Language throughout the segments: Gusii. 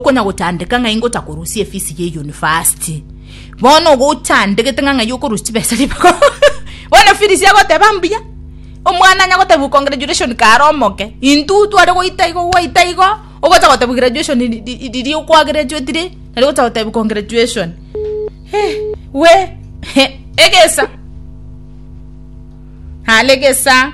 Okonya gotandeka ng'ai ngotakorusia efisi ye yunivasiti, bono igo otandegete ng'a ng'ai okorusia chibesa ribako bono firisi agoteba mbuya, omwana anya gotebiwa congratulation kare omoke, intwe tware goita igo gwaita igo, ogocha gotebiwa graduation ri- ri- riria okwa graduatire nari ogocha gotebiwa congratulation Heh, we he egesa, are egesa.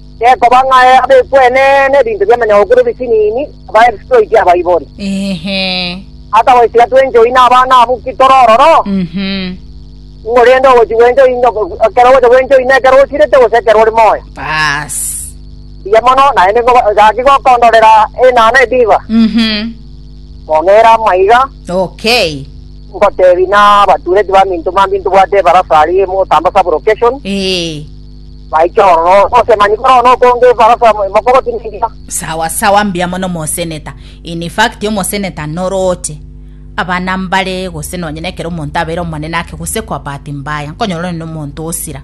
Gekoba ng'a abekwenene ebinto bi'emenyogokuru ebisinini, abaEpstroiti abaibori. Ehe. Ata goika twenchoine abana abwo ki tore ororo? Mhm. Ng'o rende ogochi gwenchoine ekero ogocha gwenchoine ekero osirete gose ekero ore moyo? Baas. Mbuya mono, naende ng'o gaki gokondorera enana ediba? Mhm. Ng'ong'eera amaiga, Okay. ngotebi na abatuureti baminto mambia ntobwate ebarasa aria emo Motambo sub-location, Ee. Baike ororo, gose mani koroo nokonge efarasi amo emokogoti nengiya. Sawa sawa mbuya mono moseneta. In fact omoseneta norooche abana mbare gose nonye nekero omonto abeire omonene ake gose kwa bahati mbaya nkonyora onye nomonto osira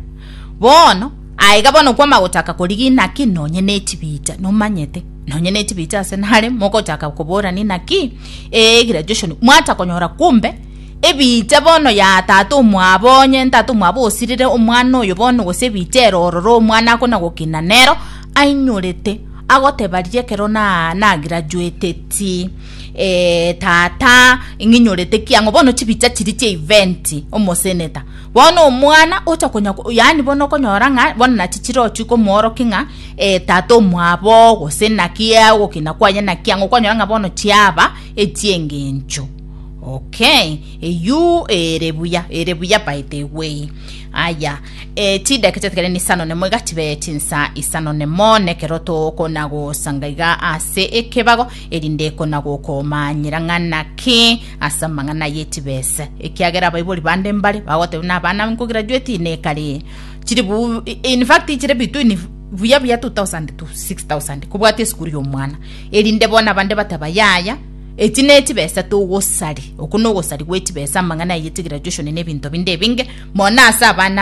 bono aiga bono kwama gochaka korigi inaki nonye nechibicha nomanyete nonye nechibicha ase nare mogochaka koborani inaki ee graduation mwacha konyora kumbe Ebiicha bono, yaa tata omwabo onye tata omwabo osirire omwana oyo bono, gose ebiicha ero ororo omwana akona gokina nero ainyorete, agoteba riria ekero na nagirachueteti ee tata ng'inyorete kiang'o bono chibicha chiria chia event omoseneta. Bono omwana ocha konya yaani bono okonyora ng'a bono nachi chirochio komworokia ng'a ee tata omwabo gose naki ogokina kwaye nakiang'o, okonyora ng'a bono chiaba echiengencho. Okay, eyuu ere buya, ere buya by the way. Aya, eh, chidaki chetikere nisano nemo iga chibe chinsa isano nemo nekero tokona gosanga iga ase ekebago erinde kona gokomanyera ng'ana ki ase amang'ana ye chibese ekiagera abaibori bande mbare bagoteba na abana nkograduate ne kare chiri bu in fact chire between buya buya 2000 to 6000 kobwati esukuru y'omwana erinde bona bande bateba yaya Eti nechibesa togosari. Oko nogosari gwechibesa, amang'ana ayetigira Joshua nere ebinto binde ebinge mono ase abana